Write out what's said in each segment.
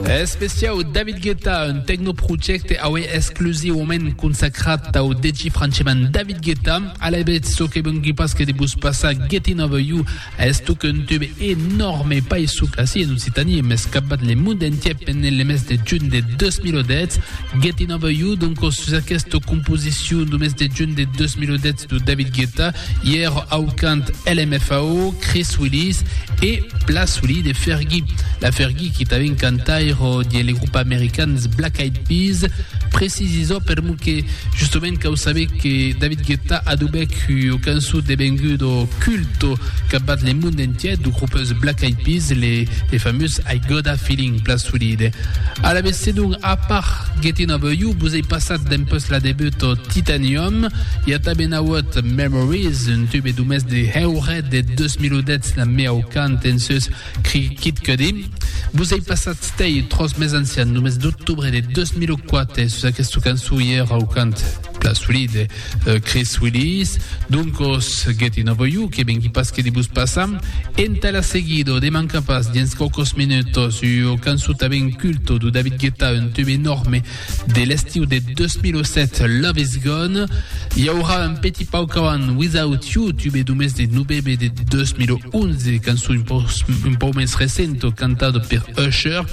Especiau David Guetta, un tecnoprojècte aué exclusivament consacrat au DJ francheman David Guetta. Alavetz, çò que vengui pas que de vos passar Getting Over You, estoc un tube enòrme, pas soc ací en Occitània, mès capbat le mond entier pendent le mes de junh de 2010. Getting Over You, doncos, sus aquesta composicion du mes de junh de 2010 du David Guetta, Ièr au cant LMFAO, Chris Willis e Pla Solid e Fergie. La Fergie qui t'avèn cantaire de le grup americans Black Eyed Peas, precisisò per mo que justament cau saber que David Guetta adobèc ua cançó devengudo culto capbat le mond entièr du grupes Black Eyed Peas, le, le famós I Gotta Feeling, Pla Solid. Alavetz, sedonc, a part Gettin' Over You, vos ei passat dempuèsla debut Titanium, i a tanben auut Memories, un tube d'umès de Heuret de 2010 la miau cant en sus Kid Cudi. Vos ei passat stei tros mes ancian, només d'octubre de 2004 sus aquesta cançon i era au cant pla solid de Chris Willis. Doncos, Getting Over You, que vengui pas que de vos passar. Entà la seguido, de manca pas, dins quaucos minutos, ua cançon tanben culto du David Guetta, un tube enorme, De l'estiu de 2007, Love Is Gone, i aurà un petit pauc avant Without You, tube d'umès de novembre de 2011, cançon un pauc, un pauc més recento, cantado per Usher,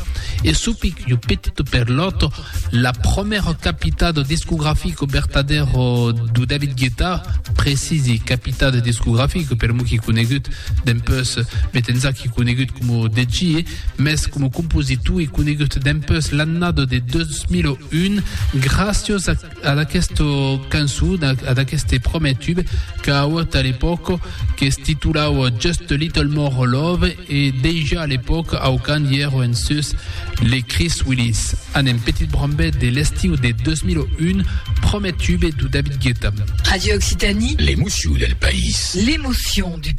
e supic jo petito per l'autre, la promèra capitado discografico vertadero do David Guetta, precisi capitado discografico, per mo qui conegut, dempeus met ensà qui conegut como DJ, Mès coma compositor e conegut dempús l'annada de 2001, gràcias ad aquesta cançon, ad aqueste prumèr tube qu'a auut a l'epòca, que's titulava Just a Little More Love, e dejà a l'epòca au cant i èra en sus les Chris Willis. Anem, Petit Brambèt de l'estiu de 2001, prumèr tube de David Guetta. Radio Occitanie. L'emoció del país. L'emoció du país.